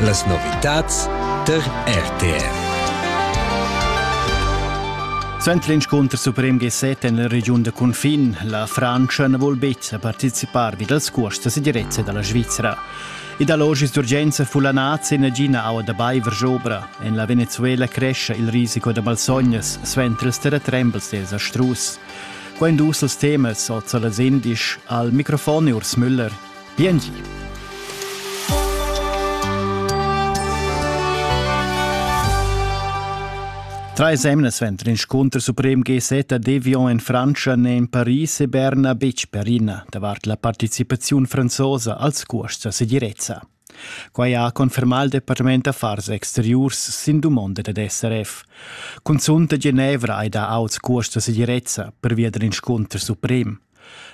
Las novitads tar RTR. Suenter l'inscunter suprem G7 en la regiun da cunfin, la Frantscha na vul betg participar vid els curs da segirezza da la Svizra. Ed allogis d'urgenza fullanats e nagina aua da baiver jobra. En la Venezuela crescha il risico da malsognas suenter ils terratrembels dels astrus. Qua indus els temas oza las indisch al microfon Urs Müller. Biengi. Treis emna suenter inscunter suprem GZ a Devion en Frantscha n'è en Paris e Berna betg perina davart la participaziun franzosa als cuosts a segirezza. Quai ha confermà il Departament d'affars exteriurs sin dumonda dad SRF. Cunzunt a Genevra hai dà auts cuosts da segirezza pervia dal inscunter suprem.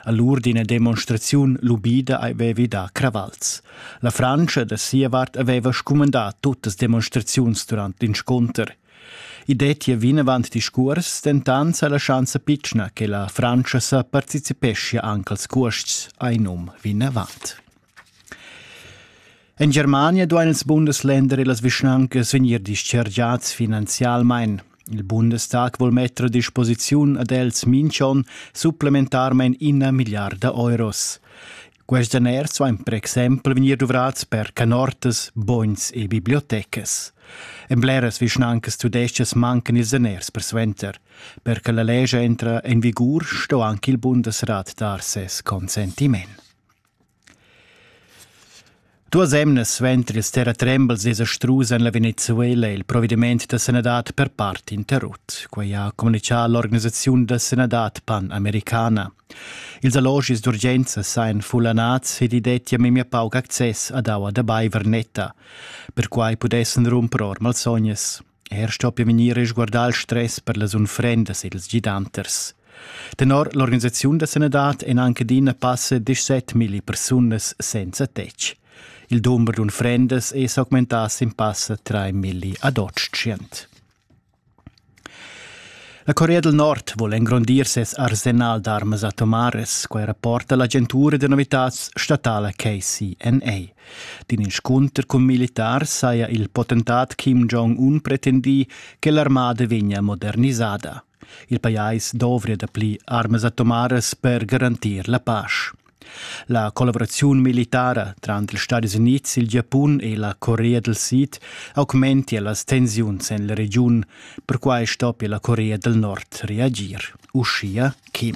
A l'ur d'ina demonstraziun lubida avevi dà cravals. La Frantscha da sia vart aveva scumandà tuttas demonstraziuns durant l'inscunter. I dettia vinavant discurs, dentant sa lascianza pitschna che la Frantscha sa participeschia anche als cuosts, ein um vinavant. En Germania duain ils Bundesländer e las vischnancas vegnir dischargiads finanzialmain. Il Bundestag vul metter a disposiziun ad els minchon supplementarmain ina milliarda euros. Quest daners vain per exempel vegnir duvrats per canortas, bogns e bibliotecas. En bleras vischnancas tudestgas mancan ils daners persuenter. Per che la legge entra in vigur sto anche il Bundesrat dar ses consentiment. Duas emnas suenter ils terratrembels esa strusa en la Venezuela il provediment da sanadad per part interrut. Quai ha communitgà l'organisaziun da sanadad pan-americana. Ils allogis d'urgenza sajan fullanads ed i dettia memia pauc access ad aua da baiver netta. Perquai pudessan rumper or malsognas. Er stoppia vegnir resguardà il stress per las unfrendas ed ils gidanters. Tenor l'organisaziun da sanadad èn anche adina passa 17.000 persunas senza tetg. Il dumber d'unfrendas è s'augmentà sin passa 3.000 ad Otschient. La Corea del Nord vuole engrandir ses arsenal d'armas atomares, quai rapporta l'agentura da novitads statala KCNA. D'in inscunter cun militars saja il potentat Kim Jong-un pretendì che l'armada vegnia modernisada. Il pajais dovria dapli armas atomaras per garantir la pace. La collaboraziun militara tranter ils Stati Unids, il Giapun e la Corea del Sid augmentia las tensiuns en la regiun. Perquai stoppia la Corea del Nord reagir, uschia Kim.